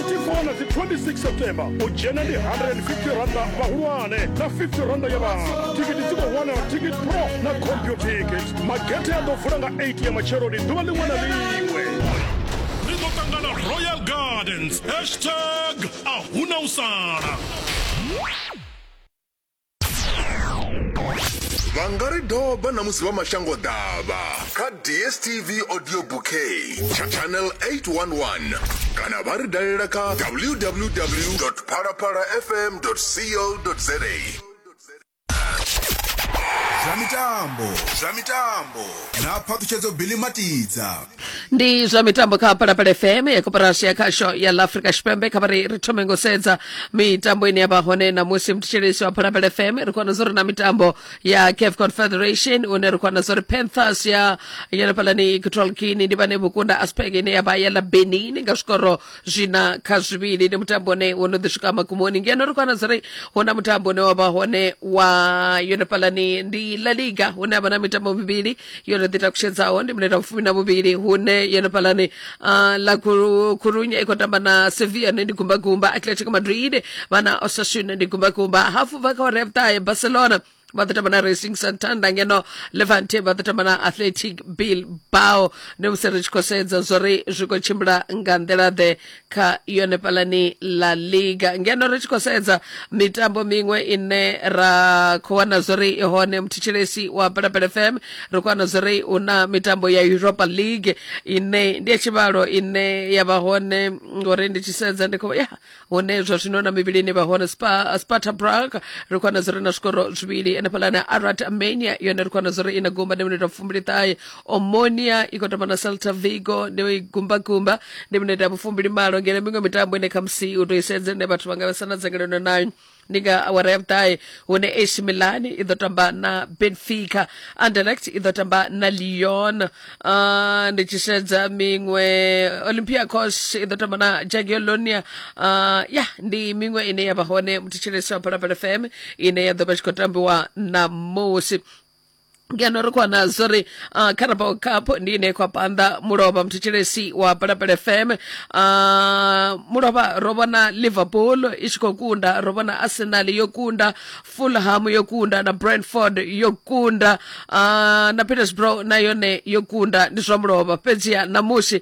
24 na dzi 26 september u dzhena ndi 150 randa vhahulwane na 50 randa ya vhana thikiti dzi khou wanala ticket pro na computicket magethe a ḓo vula nga 8 ya matsheloni ḓuvha ḽiṅwe na ḽiṅwe ri ḓo ṱangana royal gardens hashtag ahuna u sala vha nga ri doba na musi vha mashango ḓavha kha dstv audio bouquet tsha channel 811 kana vha ri dalela kha www phalaphala fm co za zwa mitambo zwa mitambo na phaṱhutshedzo bilimatiza ndi zwa mitambo kha palapala fm ya koporasi ya khasho ya la africa tshipembe kha vhari ri thome ngo sedza mitambo ine ya vha hone namusi mthetshelesi wa palapala fm ri khou zwo ri na mitambo ya caf confederation une ri khou zwo ri panthers ya yenefhalani equatorial guinea ndi vhane vhukunda aspeg ine ya vha ya la benin nga zwikoro zwina kha zwivhili ndi mutambo une wo no ḓi swika magumoni ngeno ri khou zwo ri hu na mutambo une wa vha hone wa yenefhalani ndi la liga hune ha vha na mitambo mivhili yo no ḓi takutshedzaho ndi mineta mufumi na vhuvhili hune yene phalani uh, la Khuru- khurunye i khou tamba na sevilla ne ndi gumbagumba atletico madrid vhana osasuna ndi gumbagumba hafu bva kha ora ya vhuṱahe barcelona vha ḓo tamba na racing santander ngeno levante vha ḓo tamba na athletic bilbao ndi musi ri tshi khou sedza zwo ri zwi khou tshimbila nga nḓila ḓe kha yone palani la liga ngeno ri tshi khou sedza mitambo miṅwe ine ra khou wana zwori i hone muthetshelesi wa pelapele fm ri khou wana zwori hu na mitambo ya europa league ine ndi ya tshivhalo ine ya vha hone ngori ndi tshi sedza ndi khou ya hune zwa zwino na mivhili ine vha hone Spa- sparta brag ri khou wana zwori na zwikoro zwivhili ene palani arat armenia yone ri khou wana zwori i na gumba ndi minete fumbiliṱahe omonia ikotoma na celta vigo ndi igumbagumba ndi minete ya mufumbili malo ngene mingo mitambo ine khamusi utoisenze ne bathu vanga vasana dzangalelo nayo ndi nga awara ya vhuṱahe hune ac milan i ḓo tamba na benfica anderlecht i ḓo tamba na lyon uh, ndi tshi sedza miṅwe olympiacos i ḓo tamba na jagiellonia uh, ya ndi miṅwe ine ya vha hone muthetsheleso wa phalaphala fm ine ya ḓo vha tshi khou tambiwa na musi ngeno ri khou nazwo ri uh, carabao cup ndi ine khou panda mulovha muthethelesi wa palapala fm uh, mulovha ro vhona liverpool i tshi khou kunda ro vhona arsenal yo kunda fulham yo kunda na brentford yo kunda uh, na petersbro na yone yo kunda ndi zwa mulovha fhedziha namusi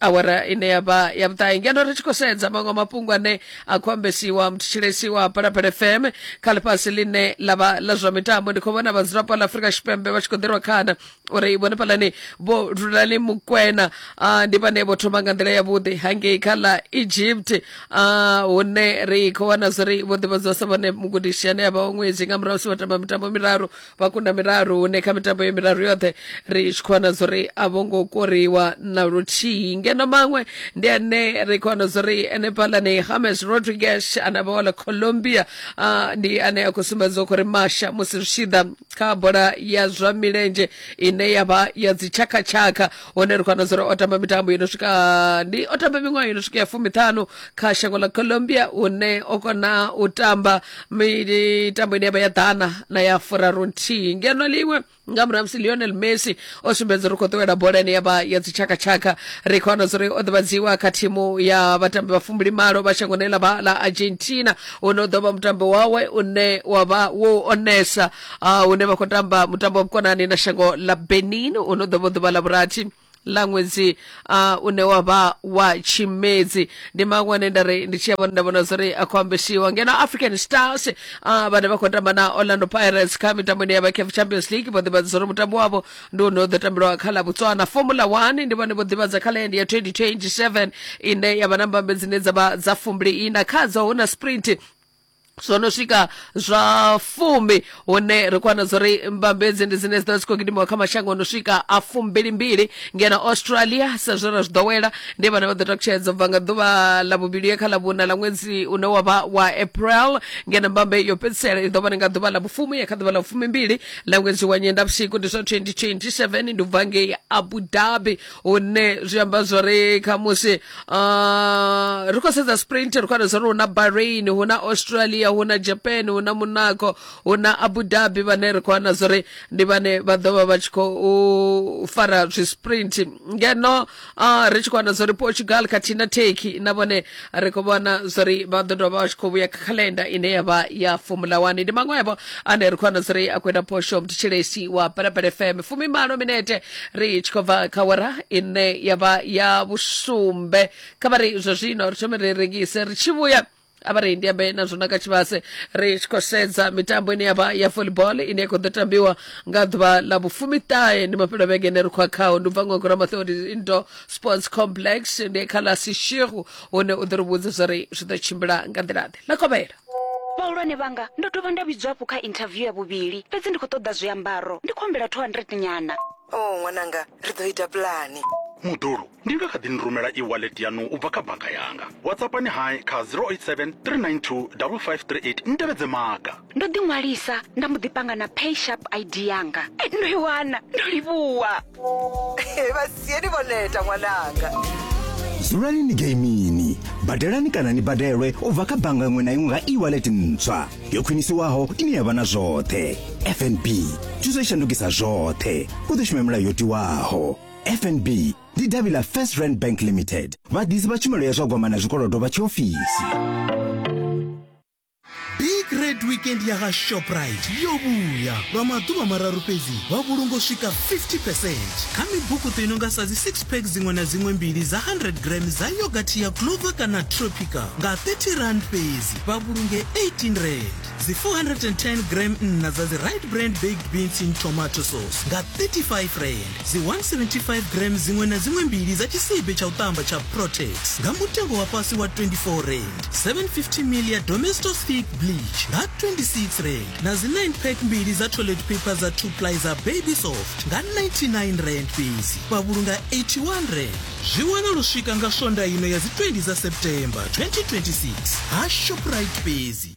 awara ine ya vha ya vhuṱahe ngeno ri tshi khou sedza maṅwe mafhungo ane a khou ambesiwa muthetshelesiwa phalaphala fm kha ḽifhasi ḽine ḽa vha ḽa zwa mitambo ndi khou vhona vhadzulapo ḽa afurika tshipembe vha tshi khou ḓirwa khana uri vhone phalani vho lulani mukwena ndi vhane vho thoma nga nḓila yavhuḓi hangei kha ḽa egypt hune ri khou wana zwo ri vho ḓivhadziwa sa vhone mugudisi ane a vha wa ṅwedzi nga murahu si vha tamba mitambo miraru vhakunda miraru hune kha mitambo ye miraru yoṱhe ri tshi khou wana zwo ri a vho ngo koriwa na luthihi ngeno maṅwe ndi ane ri khou wana zwo ri ene phalani hames rodriguez ane vha wala colombia ah, ndi ane a khou sumbedza khou ri masha musi zwi tshi ḓa kha bola ya zwa milenzhe ine ya vha ya dzitshakhatshakha hone ri khou wana zwa uri o tamba mitambo yo no swika ndi o tamba miṅwaha yo no swika ya fumiṱhanu kha shango ḽa colombia une o kona u tamba mitambo ine ya vha ya ḓana na ya furaru nthihi ngeno ḽiṅwe nga murahu musi lionel messi o sumbedza uri khou ṱuwela bola ine ya vha ya dzitshakatshaka ri khou wana zwa uri o ḓivhadziwa kha thimu ya vhatambi vha fumbili malo vha shangoni ḽa vha ḽa argentina une u ḓo vha mutambo wawe une wa vha wo onesa uh, hune vha khou tamba mutambo wa vhukonani na shango ḽa benin u no ḓo vha ḓuvha ḽa vhurathi ḽa ṅwedzi uh, une wa vha wa tshimedzi ndi maṅwe ane nda ri ndi tshi ya vhona nda vhona zwori a khou ambesiwa ngeno african stars uh, vhane vha khou tamba na orlando pirates kha mitambo ine ya vha caf champions league vho ḓivhadza zwori mutambo wavho ndi une u ḓo tambelwa kha ḽa botswana formula one ndi vhone vho ḓivhadza kha lendi ya 2027 ine ya vha na mbambe dzine dza vha dza fumbili ina khadzo hu na sprint zwo no swika zwa fumi hune ri khou wana zwo ri mbambedzi ndi dzine dzi ḓo dzi khou gidimiwa kha mashango o no swika a fumbilimbili ngeno australia sa zwe ra zwi ḓowela ndi vhane vha ḓo takutshedza u bva nga ḓuvha ḽa vhuvhili ye kha ḽa vhuna ḽa ṅwedzi une wa vha wa april ngeno mbambe yo fhedzisela i ḓo vha ni nga ḓuvha ḽa vhufumi ye kha ḓuvha ḽa vhufumimbili ḽa ṅwedzi wa nyendavhusiku ndi zwa 2027 ndi u bva ngei abu dhabi hune zwi amba zwori khamusi uh, ri khou sedza sprint ri khou wana zwori hu na bahrain hu na australia hu na japan hu na monaco hu na abu dhabi vhane ri khou wana zwori ndi vhane vha ḓo vha vha tshi khou fara zwisprint ngeno uh, ri tshi khou wana zwori portugal khathihi na turkey na vhone ri khou vhona zwori vha ḓo dovha vha tshi khou vhuya kha calendar ine ya vha ya formula one ndi maṅwevho ane ri khou vhona zwori a khou ita phosho mthetshelesi wa phalaphala fm fumi malo minete ri tshi khou bva kha wara ine ya vha ya vhusumbe kha vha ri zwa zwino ri thome ri rengise ri tshi vhuya avharendi ambe na zwona kha tshivhase ri tshi khou sedza mitambo ine yavha ya volleyball ine ya khou ḓo tambiwa nga ḓuvha ḽa vhufumiṱahe ndi mafhelo vhege ine ri khou a khao ndi u bva ngogora mathodi into sports complex ndi kha ḽa sishiru hune u ḓo ri vhudza zwa ri zwi ḓo tshimbila nga nḓila-ḓe ḽa kovhela vhahulwane vhanga ndo dovha nda vhidzwa hafhu kha interview ya vhuvhili fhedzi ndi khou ṱoḓa zwiambaro ndi khou humbela 200 nyana o ṅwananga ri ḓo ita pulani Muḓulu, ndi nga kha ḓi ni rumela e-wallet yaṋu u bva kha bannga yanga. WhatsAppani hai kha 087 392 5538 ni tevhedze maga. ndo ḓi ṅwalisa nda mbo ḓi panga na pay sharp id yanga Eh, ndo i wana ndo livhuwa vhasieni vho neta ṅwananga dzulani ni geimini badelani kana ni badelwe u bva kha bannga iṅwe na iṅwe nga e-wallet ntswa yo khwinisiwaho ine ya vha na zwoṱhe fnb thuso i shandukisa zwoṱhe u ḓo shuma milayo yo tiwaho fnb ndi davhi ḽa first rand bank limited vhaḓisi vha tshumelo ya zwa gwama na zwikolodo vha tshiofisi big red weekend ya ha shoprite yo vhuya lwa maḓuvha mararu fhedzi wa vhulunga u swika 50 percent kha mibukuṱo i no nga sa dzi six pack dziṅwe na dziṅwe mbili dza 100 gram dza yogathi ya clover kana tropica nga 30 rand fhedzi vha vhulunge 18 rand dzi 410 gram nna dza dzi right brand baked beans in tomato sauce nga 35 rand Dzi 175 grams dziṅwe na dziṅwe mbili dza tshisibe tsha u ṱamba tsha Protex nga mutengo wa fhasi wa 24 rand. 750 ml ya Domestos Thick Bleach nga 26 rand na dzi 9 pack mbili dza toilet paper dza 2 ply dza Baby Soft nga 99 rand fhedzi vha vhulunga 81 rand. Zwi wana lu swika nga swondaha ino ya dzi 20 dza September 2026 ha Shoprite fhedzi.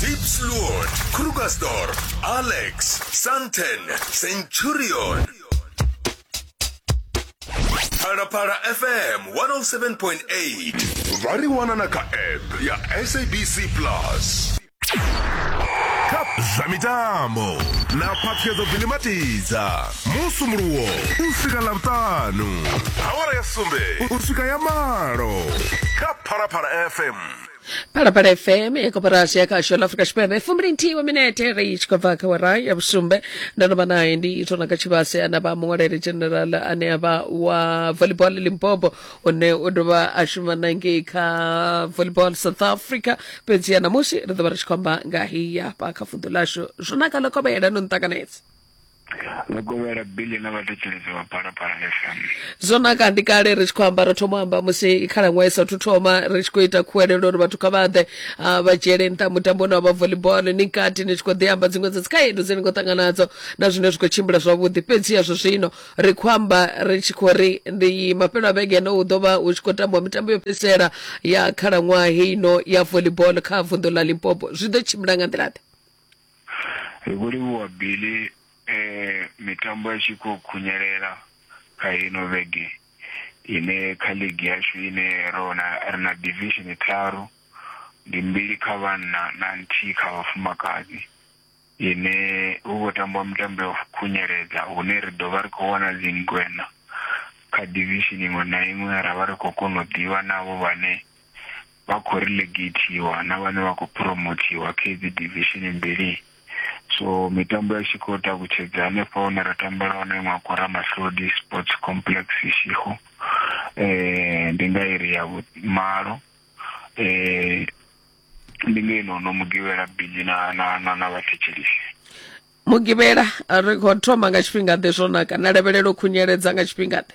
Deep Slot, Krugersdorp, Alex, Santen, Centurion. Parapara FM 107.8. Va ri wana na ka app ya SABC Plus. Cup zwa mitambo na phaṱhuyedzo vilimatiza musumuluwo u swika ḽavhuṱanu awara ya sumbe u swika ya malo phalaphala fm phalaphala fm ya koporasi ya khasho la afrika tshipembe fumbili nthihi wa minete ri tshi khou bva kha wara ya vhusumbe ndo no vha naye ndi itona ka tshivhase ana vha muṅwaleli general ane a vha wa volleyball limpopo une u dovha a shuma na ngei kha volleyball south africa fhedziha namusi ri ḓo vha ri tshi khou amba nga heyi hafha kha vunḓu ḽashu zwo naka ḽo kovhela no nṱakanedza mukovhela billy na vhathetshelezi vha phalaphala fm zwo naka ndi kale ri tshi khou amba ro thoma amba musi khalaṅwaha i sathu thoma ri tshi khou ita khuwelelo uri vhathu kha vha ḓe ah, vha dzhiele nṱha mutambo une wa vha volleyball ni kati ni tshi khou ḓi amba dziṅwe dza dzikhaedu dzine ni khou ṱangana nadzo na zwine zwi khou tshimbila zwavhuḓi fhedzi yazwo zwino ri khou amba ri tshi khou ri ndi mafhelo a vhege ene u ḓo vha u tshi khou tambiwa mitambo yo fhedzisela ya khalaṅwaha heino ya volleyball kha vunḓu ḽa limpopo zwi ḓo tshimbila nga nḓila ḓe Ri khou livhuwa Billy e mitambo ya tshi khou khunyelela kha ino vhege ine kha ligi yashu ine ro na ri na division tharu ndi mbili kha vhanna na nthihi kha vhafumakadzi ine hu khou tambiwa mitambo ya khunyeledza hune ri ḓo vha ri khou wana dzingwena kha division iṅwe na iṅwe ra vha ri khou kona u ḓivha navho vhane vha khou relegateiwa na vhane vha khou phuromothiwa kha idzi divishini mbili. So mitambo ya tshi khou takutshedza hanefha hune ra tambela hone iṅwe khou Ramahlodi Sports Complex Ishigo eh ndi nga iri ya vhumalo eh ndi nga ino no mugivhela bili na na na, na vhathetshelisi mugivhela ri khou thoma nga tshifhinga ḓe zwo naka na lavhelelo khunyeledza nga tshifhinga ḓe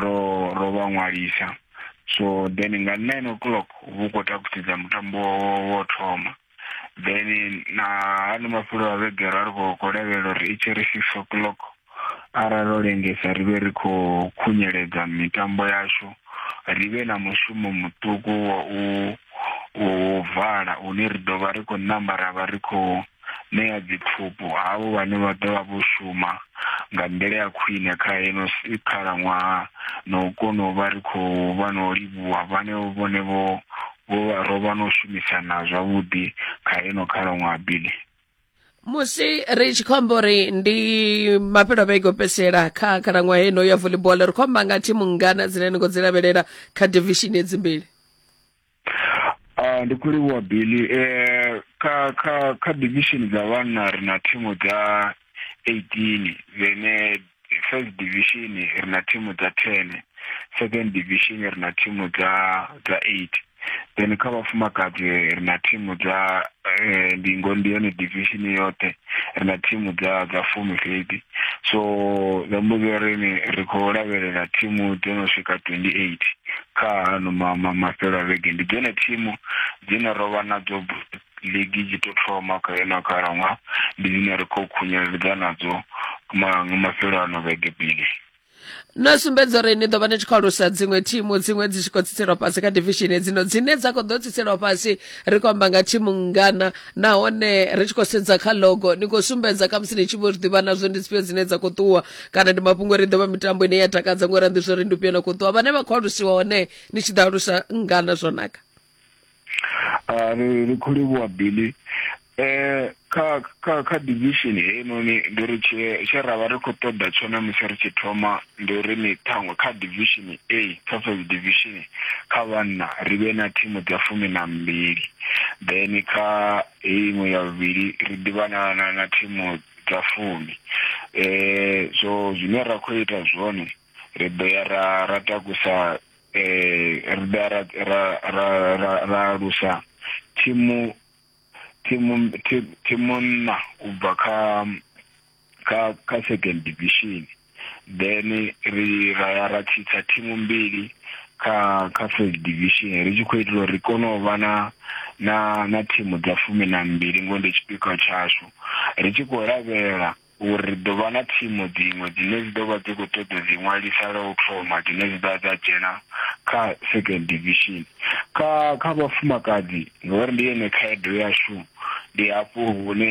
ro ro vha ṅwalisa so then nga nine o'clock vhu khou takusedza mutambo wo thoma then na ano mafulo a vhege ra ri khou lavhelela uri i tshi ri six o'clock arali ro lengesa ri vhe ri khou khunyeledza mitambo yashu ri vhe na mushumo muṱuku wa u u vala une ri ḓo vha ri khou namba ra vha ri khou ṋea dziphupu havho vhane vha ḓo vha vho shuma nga nḓila ya khwine kha heno khalaṅwaha na u kona u vha ri khou vha na u livhuwa vhanevho vhone vho vho vha ro vha na u shumisana zwavhuḓi kha heno khalaṅwaha bili musi ri tshi khou amba uri ndi mafhelo a vhege o fhedzisela kha khalaṅwaha heno ya volleyball ri khou amba nga thimu ngana dzine ni khou dzi lavhelela kha divishini edzimbili Uh, ndi kulivhuwa billy eh, kha kha kha division dza vhanna ri na thimu dza 18 vene first division ri na thimu dza 10 second division ri na thimu dza dza 8 then kha vhafumakadzi ri na thimu dza eh, ndingo ndi yone division yoṱhe ri na thimu dza dza fumi fhedzi so zwi amba zwori ni ri khou lavhelela thimu dzo no swika 28 kha ano ma, ma, mafhelo a vhege ndi dzone thimu dzine ro vha nadzo ligi dzi to thoma kha yona khalaṅwaha ndi dzine ri khou khunyeledza nadzo ma, mafhelo ano vhege bili no sumbedza uri ni ḓo vha ni tshi khou alusa dziṅwe thimu dziṅwe dzi tshi khou tsiselwa fhasi kha divishini dzino dzine dza khou ḓo tsiselwa fhasi ri khou amba nga thimu ngana nahone ri tshi khou sedza kha logo ni khou sumbedza khamusi ni tshi vho zwi ḓivha nazwo ndi dzifhio dzine dza khou ṱuwa kana ndi mafhungo ri ḓovha mitambo ine ya takadza ngori ndi zwori ndi ufhio na khou ṱuwa vhane vha khou alusiwa hone ni tshi ḓo alusa ngana zwo naka Ah, ri ri khou livhuwa billy eh kha kha kha division heinoni ndi uri tshe tshe ra vha ri khou ṱoḓa tshone musi ri tshi thoma ndi uri ni ṱhaṅwe kha division a kha first division kha vhanna ri vhe na thimu dza fumi na mbili then kha iṅwe ya vhuvhili ri ḓivha na na na thimu dza fumi eh so zwine ra khou ita zwone ri ḓo ya ra ra takusa eh ri ḓo ya ra ra ra ra ra alusa thimu thimu thi- thimu nna u bva kha kha kha second division then ri ra ya ra tshitsa thimu mbili kha kha first division ri tshi khou itela uri ri kone u vha na na na thimu dza fumi na mbili ngo ndi tshipikwa tshashu ri tshi khou lavhelela uri ri ḓo vha na thimu dziṅwe dzine dzi ḓo vha dzi khou ṱoḓa dzi ṅwalisa lwa u thoma dzine dzi ḓa dza dzhena kha second division kha kha vhafumakadzi ngori ndi yone khaedu yashu ndi hafho hune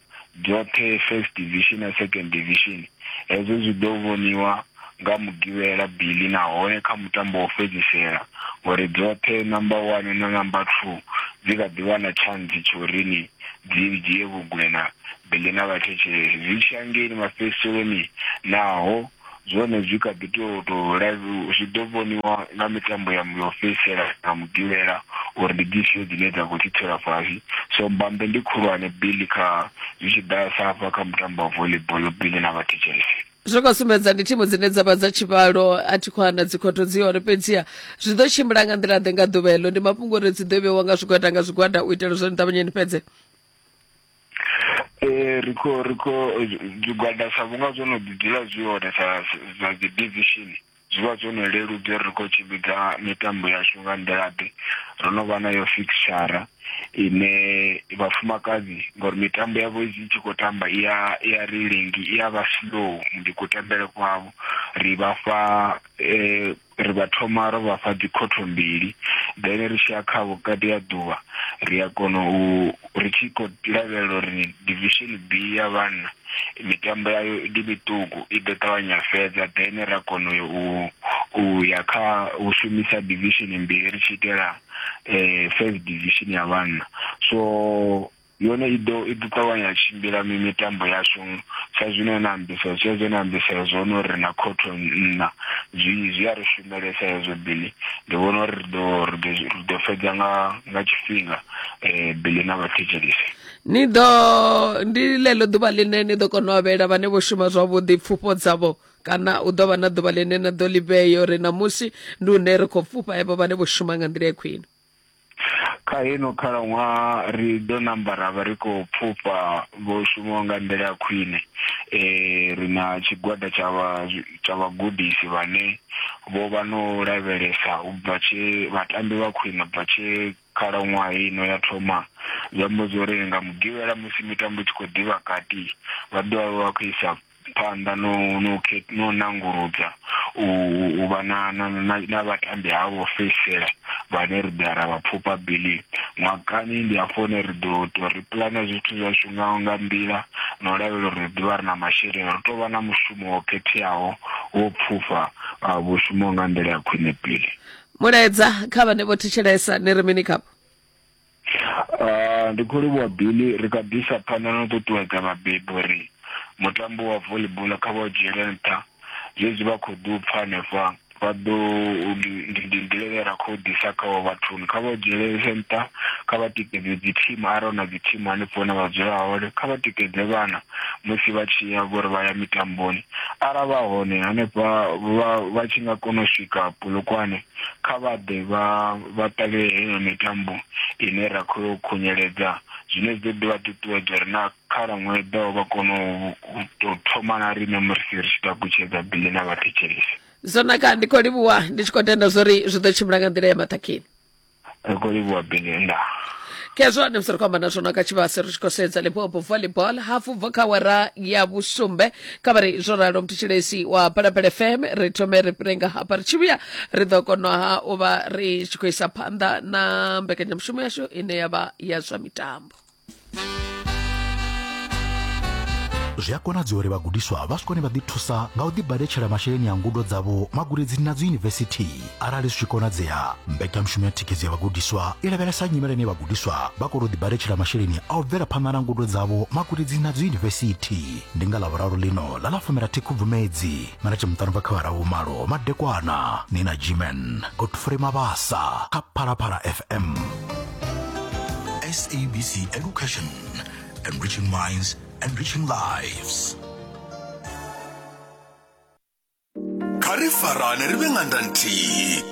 dzoṱhe First Division na Second Division. Hezwo zwi ḓo vhoniwa nga Mugivhela, Billy, nahone kha mutambo wa u fhedzisela uri dzoṱhe Number One na Number Two dzi kha ḓi wana tshantsi tsha uri ni dzi dzhie vhugwena, Billy na vhathetshelesi zwi tshi ya ngei mafhedziseloni naho zwone zwi kha ḓi tou tou live zwi ḓo vhoniwa nga mitambo ya yo fhedzisela na mugivhela uri ndi dzifhio dzine dza khou thithelwa fhasi so mbambe ndi khulwane billy kha zwi tshi ḓa sa hafha kha mutambo wa volleyball billy na vhathetshelesi zwi khou sumbedza ndi thimu dzine dza vha dza tshivhalo a thi khou ana dzikhotho dzi hone fhedziha zwi ḓo tshimbila nga nḓila ḓe nga ḓuvha heḽo ndi mafhungo uri dzi ḓo vheiwa nga zwigwada nga zwigwada u itela zwo ni ṱavhanye ni fhedze Eh, ri khou ri khou zwigwada sa vhunga zwo no ḓidzula zwi hone sa sa dzi division zwi vha zwo no leludza uri ri khou tshimbidza mitambo yashu nga nḓilaḓe ro no vha nayo fixture ine vhafumakadzi ngori mitambo yavho i tshi khou tamba i ya i ya ri lengi i ya vha slow ndi kutambele kwavho ri vha fha eh, Ri vha thoma ro vha fha dzikhotho mbili, then ri tshi ya kha vhukati ha ḓuvha ri a kona u, ri tshi khou lavhelela uri Division B ya vhanna mitambo yayo ndi miṱuku i ḓo ṱavhanya fhedza, then ra kona u u u ya kha u shumisa Division mbili ri tshi itela First Division ya vhanna. So. Yone i ḓo i ḓo ṱavhanya ya tshimbila mi mitambo yashu sa zwino na ambisa zwi zwe na ambisa zwone uri na khotho nna zwi zwi a ri shumelesa hezwo bili ndi vhona uri ri ḓo ri ḓo ri ḓo fhedza nga nga tshifhinga eh bili na vhathetshelisi ni ḓo ndi ḽeḽo ḓuvha ḽine ni ḓo kona u avhela vhane vho shuma zwavhuḓi pfufho dzavho kana u ḓo vha na ḓuvha ḽine na ḓo ḽi vhea uri ṋamusi ndi hune ri khou pfufha evho vhane vho shuma nga nḓila ya khwine kha ino khalaṅwaha ri ḓo namba ra vha ri khou pfufha vho shumaho nga nḓila ya khwine um ri na tshigwada tsha vha tsha vhagudisi vhane vho vha no lavhelesa u bva tshe vhatambi vha khwine u bva tshe khalaṅwaha ino ya thoma zwi amba zwo ri nga mugivhela musi mitambo i tshi khou ḓivha kati vha ḓo vha vha khou isa phanḓa no no no nanguludza u u vha na na na vhatambi havho fhedzisela vhane ri ḓa ra vha pfhufha bili ṅwakani ndi hafho hune ri ḓo to ri pulana zwithu zwashu nga nga nḓila na u lavhelela uri ri ḓivha ri na masheleni ri tou vha na mushumo wo khetheaho wo pfhufha vhushumo nga nḓila ya khwine pili mulaedza kha vhane vho thetshelesa ni ri mini khapo Ah, ndi khou livhuwa Billy, ri kha ḓi isa phanḓa na u ṱuṱuwedza vhabebi uri mutambo wa volleyball kha vha u dzhiele nṱha. Zwezwi vha khou ḓi u pfa hanefha, vha ḓo u, ndi, ndi, ndi nḓila ine ra khou ḓisa kha vho vhathuni. Kha vha u dzhielese nṱha, kha vha tikedze dzithimu arali hu na dzithimu hanefho hune vha dzula hone. Kha vha tikedze vhana musi vha tshi ya vhori vha ya mitamboni. Arali vha hone hanefha vha, vha tshi nga kona u swika Polokwane, Kha vha ḓe vha vha ṱalele heneyo mitambo ine ra khou yo khunyeledza, zwine zwi ḓo ḓi vha ṱuṱuwedza uri na khalaṅwaha i ḓaho vha kone u tou thoma na riṋe musi ri tshi takutshedza bili na vhathetshelesi. Zwo naka, ndi khou livhuwa ndi tshi khou tenda zwori zwi ḓo tshimbila nga nḓila ya maṱhakheni. ri khou livhuwa bini nda khezwo ane musi ri khou amba na zwona kha tshivhase ri tshi khou sedza limpopo volleyball hafu bva kha wara ya vhusumbe kha vha ri zwo ralo mutshitshilesi wa phalaphala fm ri thome ri fhire nga hafha ri tshi vhuya ri ḓo konaha u vha ri tshi khou isa phanḓa na mbekanyamushumo yashu ine ya vha ya zwa mitambo zwi a konadzea uri vhagudiswa vha swikone vha ḓithusa nga u ḓibaletshela masheleni a ngudo dzavho magudedzini na dziyunivesithi arali zwi tshi konadzea mbekanyamushumo ya thikhedzo ya vhagudiswa i lavhelesa nyimele ine vhagudiswa vha kona u ḓibaletshela masheleni a u bvela phanḓa na ngudo dzavho magudedzini na dziyunivesithi ndi nga ḽavhuraru ḽino ḽa ḽa fumirathi khubvumedzi mena chimutano va khavara vumalo madekwana ni na gman godfrey mabasa kha phalaphala fm sabc education enriching minds enriching lives kha ri farane ri vhe nga nda nthihi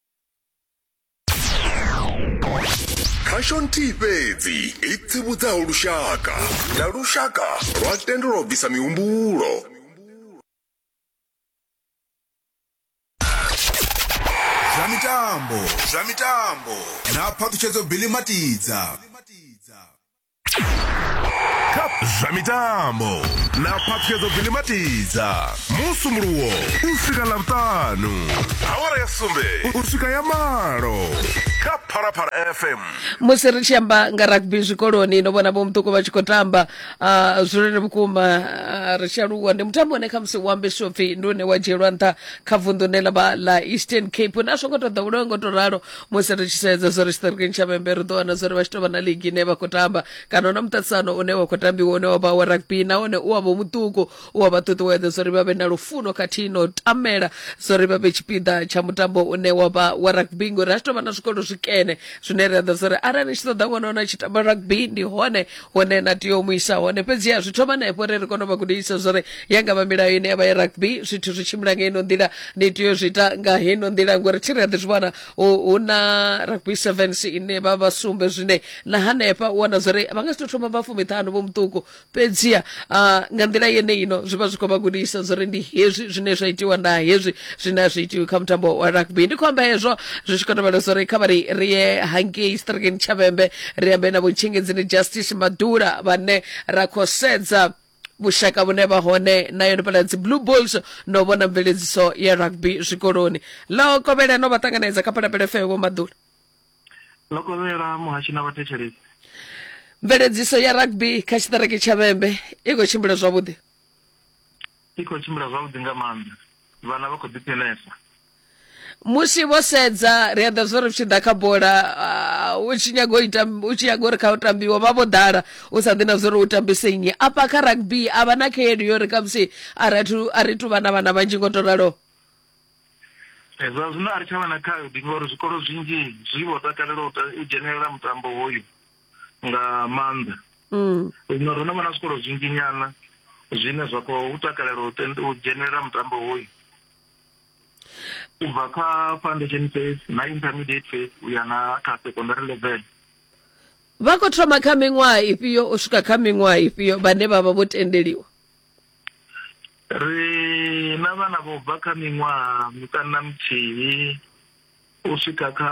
khasho nthihi fhedzi i tsivhudzaho lushaka na lushaka lwa tendelwa u bvisa mihumbulo zwa mitambo zwa mitambo na phaṱhutshedzo bilimatiza kha zwa mitambo na phaṱhuyedzo dzilimatidza musumuluwo u swika ḽavhutanu awara ya sumbe u swika ya malo kha phalaphala fm musi ri tshi amba nga rugby zwikoloni no vhona vhomuṱuku vha tshi khou tamba ah, zwilele vhukuma ah, ri tshi aluwa ndi mutambo une khamusi u ambeswa upfi ndi une wa dzhielwa nṱha kha vunḓu ne ḽa vha ḽa eastern cape na zwo ngo to ḓowelewa ngo to ralo musi ri tshi sedza zwo ri tshiṱirikini tsha vhembe ri ḓo wana zwo ri vha tshi tou vha na ligi ine vha khou tamba kana hu na muṱaṱisano une wa khou tambiwa une wa vha wa rugby nahone u wa vha muṱuku u wa vha ṱuṱuwedza zwo ri vha vhe na lufuno khathihi no tamela zwo ri vha vhe tshipiḓa tsha mutambo une wa vha wa rugby ngori ha tshi tou vha na zwikolo zwikene zwine ri a ḓa zwo ri arali ni tshi ṱoḓa ṅwana wana tshi tamba rugby ndi hone hune na tea u mu isa hone fhedziha zwi thoma na efho ri ri kona u vha gudisa zwori ya nga vha milayo ine ya vha ya rugby zwithu zwi tshimbila nga ino nḓila ni tea u zwi ita nga heno nḓila ngori thi ri a ḓi zwi vhona hu hu na rugby sevens ine vha vha sumbe zwine na hanefha u wana zwori vha nga si to thoma vha fumiṱhanu vho muṱuku fhedziha ah, nga nḓila yeneino zwi vha zwi khou vha gudisa zwori ndi hezwi zwine zwa itiwa na hezwi zwine a zwi itiwi kha mutambo wa rugby ndi khou amba hezwo zwi tshi khou tovhela zwori kha vha ri ri ye hangei strikeni tshavhembe ri ambe na vhutshingedzini justice madula vhane ra khou sedza vhushaka vhune vha hone na yone pala dzi blue bulls no vhona mveledziso ya rugby zwikoloni ḽo kovhela no vha ṱanganedza kha phalapele feo vho madula ḽo kovhela muhashi na vhathetshelesi mveledziso ya rugby kha tshiṱiriki tsha vhembe i khou tshimbila zwavhuḓi I khou tshimbila zwavhuḓi nga maanḓa. Vhana vha khou ḓiphinesa. Musi vho sedza ri a ḓa zwo ri tshi ḓa kha bola u tshi nyaga u ita u tshi nyaga uri kha u tambiwa vha vho ḓala u sa ḓi na zwo ri u tambise nnyi afha kha rugby a vha na khaedu yo ri khamusi a ri athu a ri tu vha na vhana vhanzhi ngo to ralo Eh, zwa zwino a ri tsha vha na khaedu ngori zwikolo zwinzhi zwi vho takalela u ta- u dzhenelela mutambo hoyu nga maanḓa mm. zwino ro no vha na zwikolo zwinzhi nyana zwine zwa khou takalela u dzhenelela mutambo hoyu u bva kha foundation phase na intermediate phase u ya na kha secondary level vha khou thoma kha miṅwaha ifhio u swika kha miṅwaha ifhio vhane vha vha vho tendeliwa ri na vhana vho bva kha miṅwaha miṱanu na muthihi u swika kha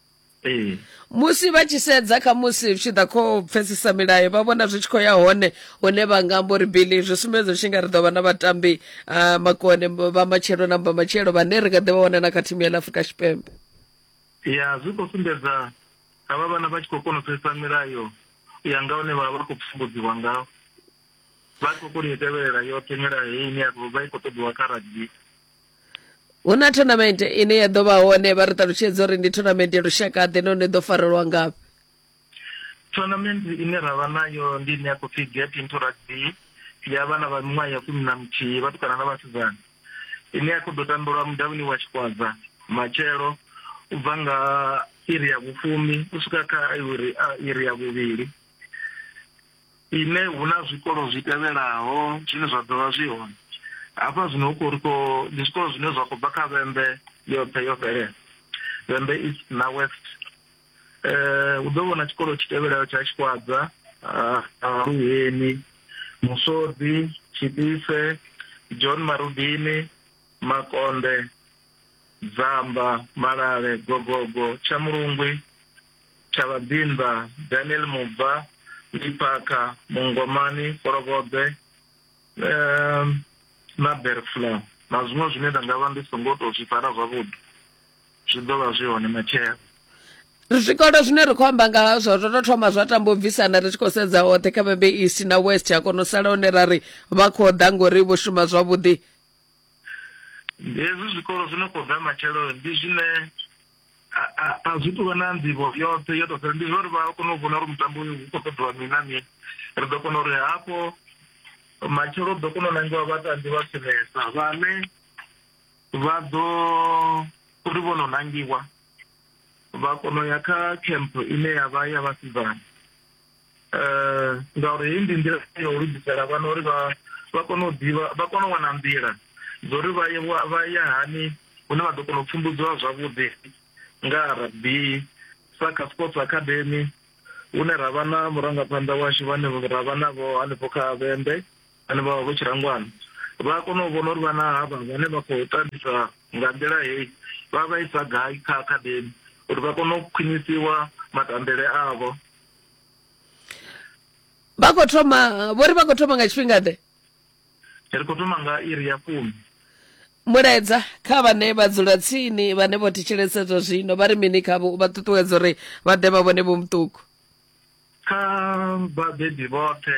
ee musi vha tshi sedza kha musi tshi ḓa kho pfesesa milayo vha vhona zwi tshi khou ya hone hune vha nga amba uri bili zwi sumbedza tshi nga ri ḓo vha na vhatambi uh, makone vha matshelo na mba matshelo vhane ri nga ḓi vha wana na kha thimu ya ḽa afurika tshipembe ya zwi khou sumbedza ha vha vhana vha tshi khou kona u pfesesa milayo ya nga hune vha vha khou pfumbudziwa ngaho vha khou kona u tevhelela yoṱhe milayo ine ya vha i khou ṱoḓiwa kha rugby hu na tournament ine ya ḓo vha hone vha ri ṱalutshedza uri ndi tournament ya lushaka ḓe none ḓo farelwa ngafhi tournament ine ra vha nayo ndi ine ya khou pfhi get into rugby ya vhana vha miṅwaha ya fumi na muthihi vhatukana na vhasidzana ine ya khou ḓo tambelwa mudavhini wa tshikwazza matshelo u bva nga iri ya vhufumi u swika kha iri ya vhuvhili ine hu na zwikolo zwi tevhelaho zwine zwa ḓo vha zwi hone hafha zwino hu khou ri khou ndi zwikolo zwine zwa khou bva kha vhembe yoṱhe yo fhelela vhembe east na west um hu ḓo vhona tshikolo tshi tevhelaho tsha tshikwadza luheni musodi tshipise john marubini makonde dzamba malale gogogo tsha mulungwi Tshavhabimba, Daniel Mubva, Liphakha, Mungomani, Folokobe, um na Berfla na zwiṅwe zwine nda nga vha ndi songo tou zwi fara zwavhuḓi zwi ḓo vha zwi hone matshelo zwikolo zwine ri khou amba nga hazwo zwo tou thoma zwa tamba u bvisana ri tshi khou sedza hoṱhe kha vhembe east na west ya kona u sala hone ra ri vha khou ḓa ngori vho shuma zwavhuḓi hezwi zwikolo zwi no khou ḓa matshelo ndi zwine a zwi tuvha na nḓivho yoṱhe yo tou ndi zwa uri vha kone u vhona uri mutambo uyu hu khou ṱoḓiwa mini na mini ri ḓo kona uri hafho matshelo ḓo kona u nangiwa vhatambi vha khwinesa vhane vha ḓo uri vho no nangiwa vha kona u ya kha camp ine ya vha ya vhasidzana um ngauri heyi ndi nḓila ya u lugisela vhana uri vha vha kone u ḓivha vha kone u wana nḓila dzo uri vha ye vha ya hani hune vha ḓo kona u pfumbudziwa zwavhuḓi nga rugby sa kha sports academy hune ra vha na murangaphanḓa washu vhane ra vha navho hanefho kha vhembe vhane vha vha vho tshirangwana vha a kona u vhona uri vhana havha vhane vha khou tambisa nga nḓila heyi vha vha isa gai kha academy uri vha kone u khwinisiwa matambele avho vha khou thoma vho ri vha khou thoma nga tshifhinga ḓe ri khou thoma nga iri ya fumi mulaedza kha vhane vha dzula tsini vhane vho thetshelesa zwa zwino vha ri mini khavho vha ṱuṱuwedza uri vha ḓe vha vhone vho muṱuku kha vhabebi vhoṱhe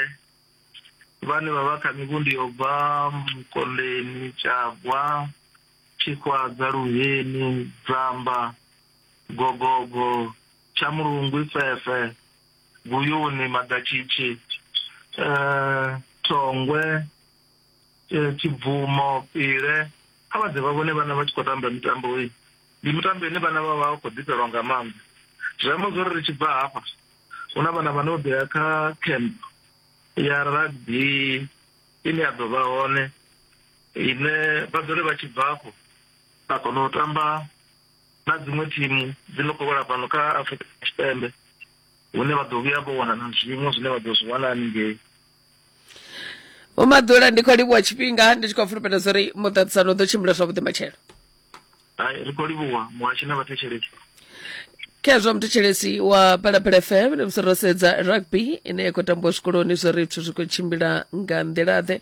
vhane vha vha kha mivhundi yo bva mukondeni tshagwa tshikwadzwa luheni dzamba gogogo Tshamulungwi, Fefhe, Guyuni, Maḓatshitshi, Thongwe, Tshibvumo, Pile, kha vha ḓe vha vhone vhana vha tshi khou tamba mitambo heyi. Ndi mitambo ine vhana vha vha vha khou ḓifhelwa nga maanḓa. Zwi amba zwo ri ri tshi bva hafha hu na vhana vha no ḓo ya kha camp ya rugby ine ya ḓo vha hone ine vha ḓo ri vha tshi bva afho vha kona u tamba. na dziṅwe thimu dzi no khou wela fhano kha Afurika Tshipembe hune vha ḓo vhuya vho wana na zwiṅwe zwine vha ḓo zwi wana haningei Vho Maḓula ndi khou livhuwa tshifhinga ndi tshi khou fulufhela zwa uri muṱaṱisano u ḓo tshimbila zwavhuḓi matshelo. hai ri khou livhuwa muhashi na vhathetshelesi khezwo muthetshelesi wa phalaphala fm ndi musi ro sedza rugby ine ya khou tambiwa zwikoloni zwo ri zwithu zwi khou tshimbila nga nḓila-ḓe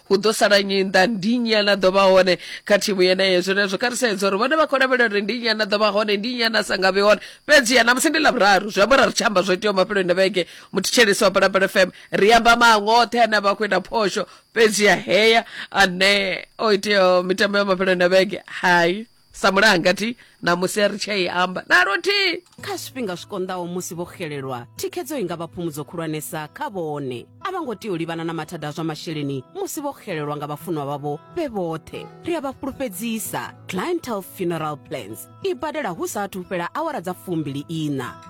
hu ḓo sala nnyi nnḓa ndi nnyi ana ḓo vha hone kha thimu yeneyo zwenezwo kha ri sedza uri vhone vha khou lavhelela uri ndi nnyi ana ḓo vha hone ndi nnyi ana sa nga vhe hone fhedzi ya namusi ndi lavhuraru zwi amba uri ri tshi amba zwo iteaho mafheloni na vhege muthetshelesi wa palapala fm ri amba maṅwe oṱhe ane a vha khou ita phosho fhedzi ya heya ane o iteaho mitambo ya mafheloni na vhege hai samulaha ngati namusi ri tshei amba na luthihi kha zwifhinga zwi konḓaho musi vho xelelwa thikhedzo i nga vha phumudzo khulwanesa kha vhone a vha ngo tea u livhana na mathada a zwa masheleni musi vho xelelwa nga vhafunwa vhavho vhe vhoṱhe ri a vha fhulufhedzisa clientel funeral plans i badela hu sa athu fhela awara dza fumbili ina